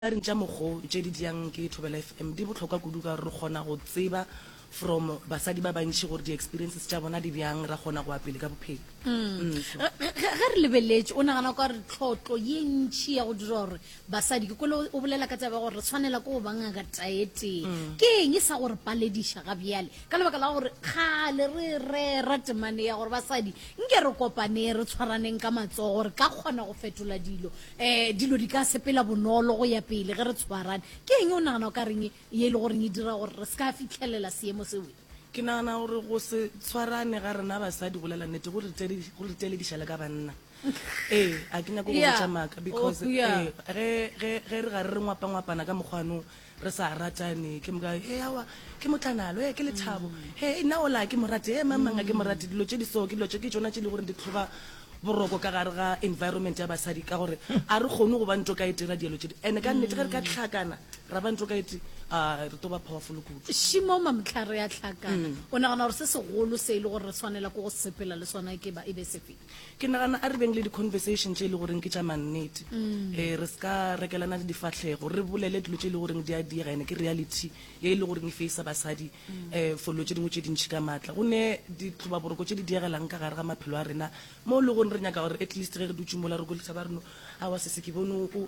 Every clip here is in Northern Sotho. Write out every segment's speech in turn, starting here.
Diaring tša mokgo tše di diang ke Thobela FM di bohlokwa kudu ka gore re kgona go tseba from basadi ba bantši gore di-experiences tša bona di bjang, ra kgona go ya pele ka bophelo. Mm, so. Ge, ge, ge re lebeletše, o nagana ka gore tlhotlo ye ntši ya go dira gore basadi, ke kwele o bolela ka taba ya gore re swanela ke go ba ngaka taetee, ke eng e sa go re palediša ga bjale? Ka lebaka la gore kgale re e rera temane ya gore basadi nke re kopaneng, re tshwaraneng ka matsogo, re ka kgona go fetola dilo. um dilo di ka sepela bonolo go ya pele ge re tshwarane ke eng o nagana o ka reng ye e le goreng e dira gore re se ka fitlhelela seemo sewe ke nagana gore go se tshwarane ga rena basadi go lela nnete go re telediša le ka banna ee a ke nyako go botša maaka because ge re ga re re ngwapangwapana ka mokgwanong Re sa ratane, ke moka, Hee, aowa, ke motlanalo, hee, ke lethabo, Hee, nna ola ga ke mo rate, hee, mang, mang ga ke mo rate, dilo tše di so, ke dilo tše, ke tšona tše e le gore di tlhoba boroko ka gare ga environment ya basadi, ka gore ga re kgone go ba ntokaetee ra dielo tše di, and-e ka nnete ge re ka hlakana ra ba ntokaetee, aa, re tlo ba powerful kudu. Shimo, Mamtla, re a hlakana, o nagana gore se segolo se e le gore re swanela ke go sepela le sona e ke ba e be sefe? Ke nagana a re beng le di-conversation tše e le goreng ke tša mannete um re se ka rekelana le difahlego re bolele dilo tše e le goreng di a diega ene ke reality ye e le goreng e faisa basadi um for dilo tše dingwe tše dintšhi ka maatla go ne ditlobaboroko tše di diegelang ka gare ga maphelo a rena mo e le goreng re nyaka gore at least ge re dutše mola re kolisa ba reno awa sese ke bone o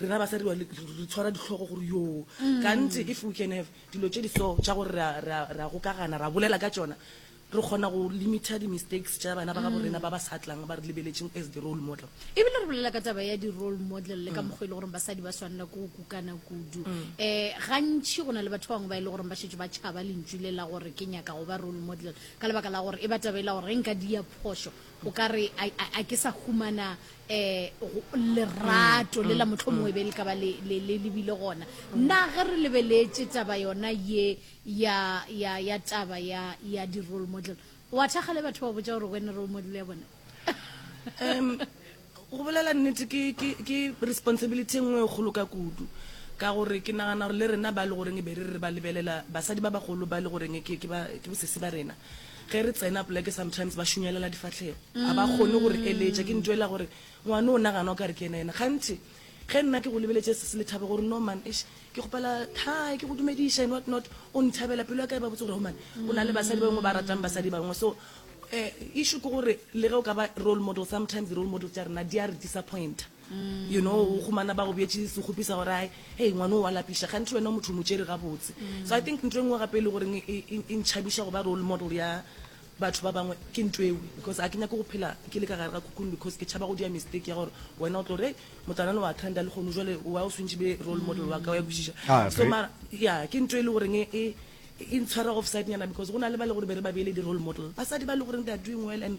rena basadi wa re tshwara ditlhogo gore yo kante if we can have dilo tše di so tša gore ra gokagana ra bolela ka tšona re kgona go limita di-mistakes tša bana ba ga borena ba ba sa tlang ba re lebeletšeng as the role model ebile re bolela ka taba ya di-role model le ka mokgwa e le goreng basadi ba swanela ko go kukana kudu um gantšhi go na le batho ba bangwe ba e le goreng ba šetse ba tšhaba lentšu le la gore ke nyaka go ba role model ka lebaka la gore e ba taba e la gore ge nka dia phošo o ka re a ke sa humana um lerato le la mohlomongwe be le ka ba le le- le le bile gona na ge re lebeletše taba yona ye ya ya ya taba ya ya di-role model wa thakga le batho ba botša gore wena role model ya bona um go bolela nnete ke, ke, ke responsibility e nngwe e kgolo ka kudu ka gore ke nagana gore le rena ba le goreng e be re re ba lebelela basadi ba bagolo ba le goreng ke, ke, ba, ke bosesi ba rena Ge re tsena poleke sometimes ba šunyelela difahlego, ga ba kgone go re eletša. Ke ntwa e la gore ngwane o nagana o ka re ke yena yena. Kganthe ge nna ke go lebeletše sesi le Thabo gore no man eish ke kgopela hi ke go dumediša and what not, o nthabela, pelo ya ka e ba botse gore human o na le basadi ba bangwe ba ratang basadi ba bangwe. So issue ke gore le ge o ka ba role model sometimes di-role model tša rena di a re disappointer. you know o humana ba go bjetše segopi sa gore ai hei ngwane o wa lapiša ganthe wena o motho o mo tšere gabotse so i think nto e nngwe gape e le goreng e, e, e, e ntšhabiša go ba role model ya batho ba bangwe ke nto ewe because a ke nyake go phela ke le ka gare ga kukung because ke tšhaba go dia mistake ya gore wena o tlo gore motlanane wa trenda le kgono jale wa o swantšhe be role model wa ka wa kwešiša ah, so mara ya ke nto e le goreng e, e e ntshwara offside nyana because go na le ba le gore be re ba beele di-role model basadi ba le goreng they are doing well and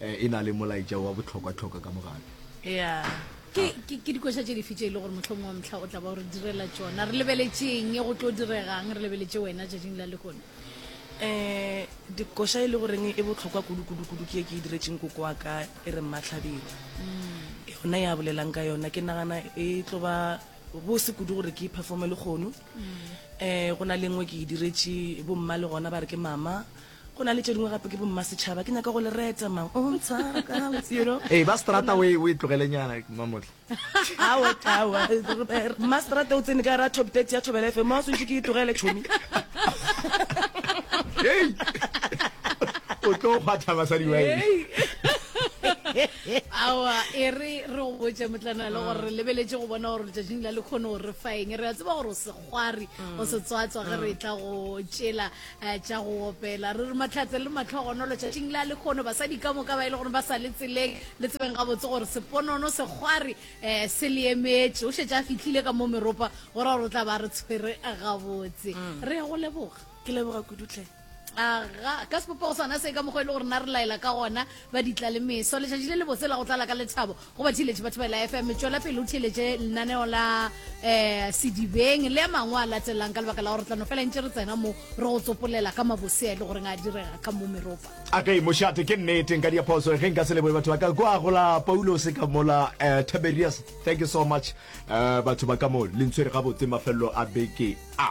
e na le molaetša wa bohlokwa-hlokwa ka mogare. Ya, ke, ah. ke, ke dikoša tše dife tše e le gore mohlomong wa motlha o tla ba o re direla tšona re lebeletšeng go tlo diregang re lebeletše wena tšatšing la lekone um dikoša e le goreng e botlhokwa kudu-kudu-kudu ke e ke e diretseng koko wa ka e re mmatlhabeng mm. yona ya bolelang ka yona ke nagana e tlo ba bose kudu gore ke performe le kgono um go na lengwe ke e diretse bomma le gona ba re ke mama Go na le tše dingwe gape ke bommasetšhaba, ke nyaka go le reta mang o ntshara ka gabotse, you know. Ee, ba seterata o e tlogelenyana, Mamotle. Aowa, aowa, mma seterata o tsene ka gara Top 30 ya Thobela FM, mma o swantšwe ke e tlogele, tšhomi. Hei! O tlo kgwatha basadi ba eng? Aowa, e re re go botše, Motlana, le gore re lebeletše go bona gore letšatšing la lekhono o re fa eng. Re a tseba gore o se. kgwari mm. o setswatswa ge re mm. tla go tšela eh, tša go opela re re matlhatse le matlhogonolo tšatšing la le kgono basadi ka moka ba e le gore ba sa le tseleng le tsebeng gabotse gore seponono sekgwari um se le emetše o šetse a fitlhile ka mo meropa gore gore o tla ba re tshwere gabotse mm. re ya go leboga ke leboga kudutlhe aga ka sepopego sona se ka mokgwa e le gore na re laela ka gona ba ditla le meso letšatši le lebotse la go tlala ka lethabo go ba theletše batho ba la fm tšwela pele o theletše lenaneo la um sedibeng le a mangwe a latelang ka lebaka la gore tlano fela ntše re tsena mo re go tsopolela ka mabosea e le goreng a direga ka mo meropa a ka imošate ke nneteng ka diaphoso ge nka se leboe batho ba ka kwa gola paulose ka mola um tiberius thank you so much um batho ba ka mo lentshwere gabotse mafelelo a beke a